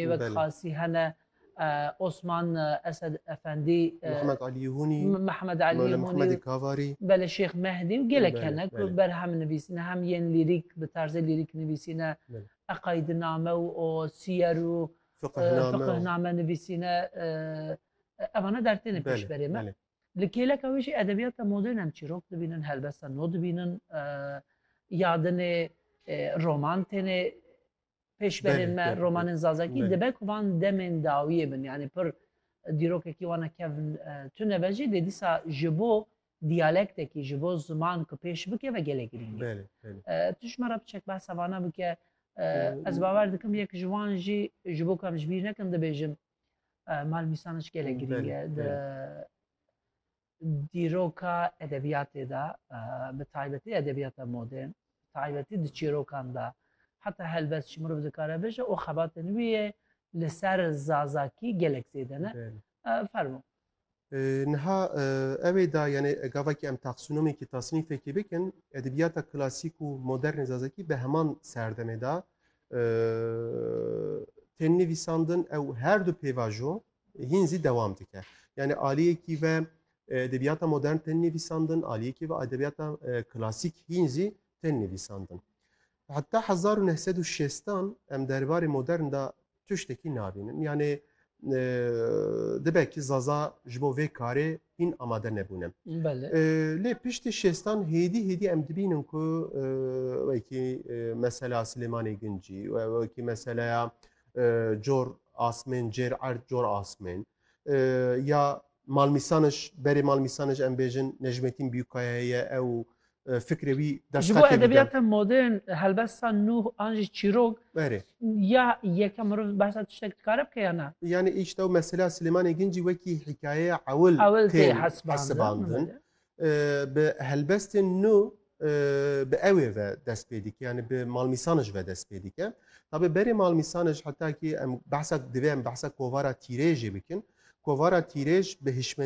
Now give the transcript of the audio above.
Ê wek Belê. xasî hene e, Osman e, Esed Efendî, e, Mehmed Alî Hûnî, M- Mehmed Alî Mewle Hûnî Mehmedê û Kavarî. Belê Şêx Mehdî û gelek Belê, hene ku belê. berhem nivîsîne hem yên lîrîk bi tarzê lîrîk nivîsîne Belê. eqaydiname û o siyer û e, Fiqihname û- fiqihname nivîsîne e, evane dertêne Belê, pêşberê me. belê. Li kêleka wê jî edebiyata modern em çîrok dibînin, helbesta nû dibînin, e, yadinê, e, roman têne pêşberên me romanên Zazakî dibe ku van demên dawiyê bin yanî pir dîrokekî wana kevn tune be jî dê dîsa ji bo diyalektekî ji bo ziman ku pêş bikeve gelê girîng tu ji me re biçek behsa vana bike ez bawer dikim yek ji wan jî ji bo ku em ji bîr nekin dibêjim mal mîsaniş gelê girîng e Dîroka edebiyatê de bi taybetî edebiyata modern bi taybetî di çîrokan de heta helbest jî mirov dikare bije û xebatên wî yê li ser zazakî gelek zêde ne. Fermo. Niha ewê da yanê gavekî em taksûnomekî tasnîfekî bikin edebiyata klasîk û modernê zazakî bi heman serdemê de tên nivîsandin ew her du pêvajo Hîn zî dewam dike. Yanî aliyekî ve edebiyata modern tên nivîsandin, aliyekî ve edebiyata klasîk hîn zî tên nivîsandin. Heta hezar û neh sed û şêstan em derbarê modern de tiştekî nabînin. Yanê dibe ki zaza ji bo vê karê hîn amade nebûne. Lê piştî şêstan hêdî hêdî em dibînin ku wekî mesela Silêmanê Gincî, wekî meseleya cor asmên cêr erd cor asmên ya malmîsanij berê malmîsanij em bêjin Necmetîn Bîyûkaya ye ew fikrê wî Ji bo edebiyata modern helbesta nû an jî çîrok berê ya yeke mirov behsa tiştek dikare bike ya na yanî îştew mesela Silêmanê Gincî wekî hîkayeya ewil tê hesibandin Bi helbestên nû bi ewê ve dest pê dike yani bi malmîsanij ve dest pê dike. Tabê berê malmîsanij heta kî em behsa divê em behsa kovara tîrêjê bikin. Kovara tîrêj bi hişmen